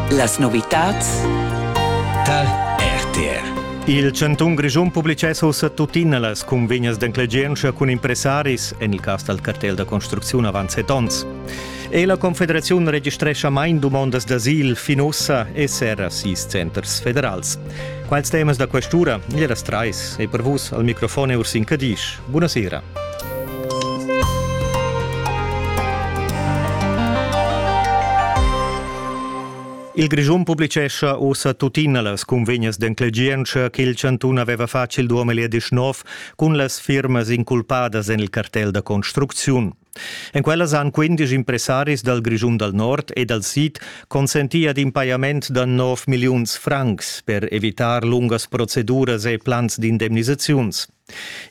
Las novitads tar RTR. Il chantun Grischun publicess ussa tuttina las cunvegnas d'enclegientscha cun impressaris en il cas dal cartel da construcziun avant set onns. E la Confederaziun registrescha main dumondas d'asil fin ussa esser a sis centers federals. Quals temas da questura? Gli das trais e per vus al microfon Ursin Cadisch. Buonasera. Il Grischun publicescha ussa tuttina las cunvegnas d'enclegientscha ch'il chantun aveva fatg il 2019 cun las firmas inculpadas en il cartel da construcziun. En quellas han quindisch impressaris dal Grischun dal Nord e dal Sid consentì ad in pajament da 9 milliuns francs per evitar lungas proceduras e plans d'indemnisaziuns.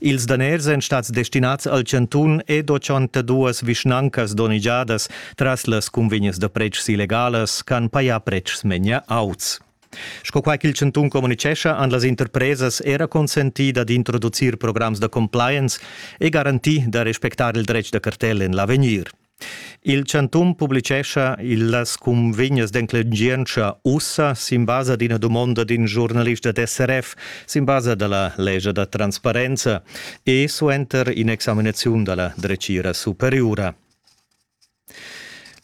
Ils daners èn stads destinads al chantun ed 82 vischnancas donnegiadas tras las cunvegnas da pretschs illegalas ch'han pajà pretschs memia auts. Sco quai ch'il chantun communitgescha, han las interpresas era consentì dad introducir programs da compliance e garantì da respectar il dretg da cartel en l'avegnir. Il chantun publicescha las cunvegnas d'enclengientscha ussa sin basa d'ina dumonda d'in giurnalist da SRF sin basa da la lescha da transparenza e suenter in'examinaziun da la dretgira superiura.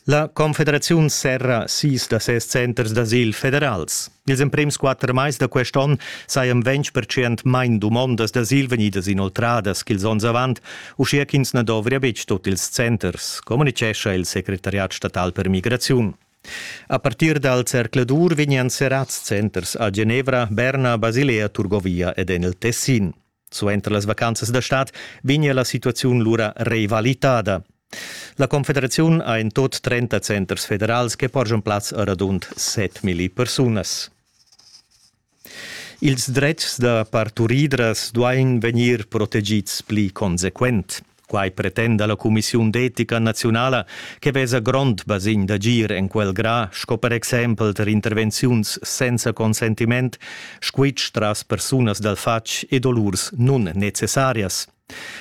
La Confederaziun serra sis da ses centers d'asil federals. Ils emprems quatter mais da quest onn sajan ventg percent main dumondas d'asil vegnidas inoltradas ch'ils onns avant, uschia ch'ins na dovria betg tut ils centers, communitgescha il secretariat statal per migraziun. A partir dal zercladur vegnian serrads centers a Genevra, Berna, Basilea, Turgovia ed en il Tessin. Suenter las vacanzas da stad vegnia la situaziun lura revalitada. La Confederaziun ha en tot 30 centers federals che porgian plaz a radund 7.000 persunas. Ils dretgs da parturidras duain vegnir protegids pli consequent. Quai pretenda la cumissiun d'etica naziunala che vesa grond basegn d'agir en quel gra sco per exempel tar intervenziuns senza consentiment, squitsch tras persunas dal fatg e dolurs nunnecessarias.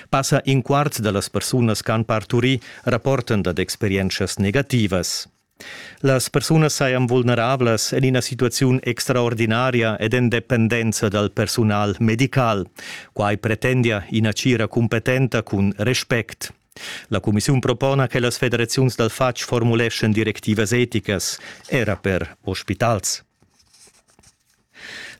Passa in quart da las persunas ch'han parturì rapportan dad experientschas negativas. Las persunas sajan vulnerablas en ina situaziun extraordinaria ed en dependenza dal persunal medical. Quai pretendia ina tgira cumpetenta cun respect. La cumissiun propona che las federaziuns dal fatg formuleschan directivas eticas, era per ospitals.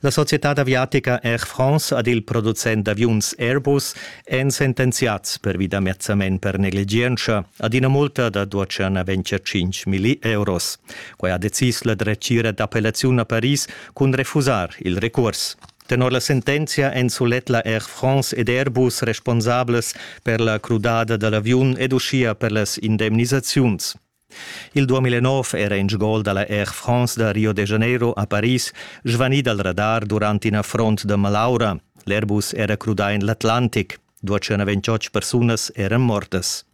La societad aviatica Air France ed il producent d'aviuns Airbus èn sentenziads pervi da mezzament per negligientscha ad ina multa da duatscha naventia 5.000 euros. Quai ha decis la dretgira d'appellaziun a Paris cun refusar il recurs. Tenor la sentenzia èn sulet la Air France ed Airbus responsablas per la crudada da l'aviun ed uschia per las indemnisaziuns. Il 2009 era in gol dalla Air France da Rio de Janeiro a Paris svanì dal radar durant in affront da malaura. L'Airbus era crudà en l'Atlantic. 228 persunas eran mortas.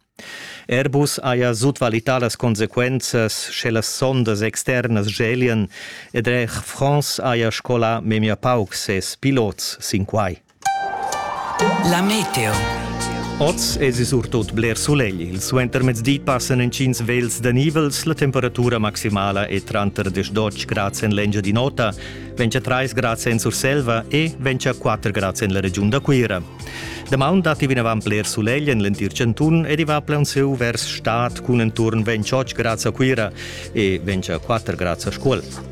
Airbus haja sutvalità las consequenzas sche las sondas externas gelien ed Air France haja scolà memia pauc ses pilots sin quai. La meteo. Oz èsi surtut bler sulegl. Il suentermezdi passan intgins vels da nivels. La temperatura maximala è tranter 10 grads en l'Engia di Nota, ventg a 3 grads en Surselva e ventg a 4 grads en la regiun da Cuira. Damaun datti vinavant bler sulegl en l'entir chantun ed i va plaunsieu vers stad cun enturn 28 grads a Cuira e 24 grads a Scuol.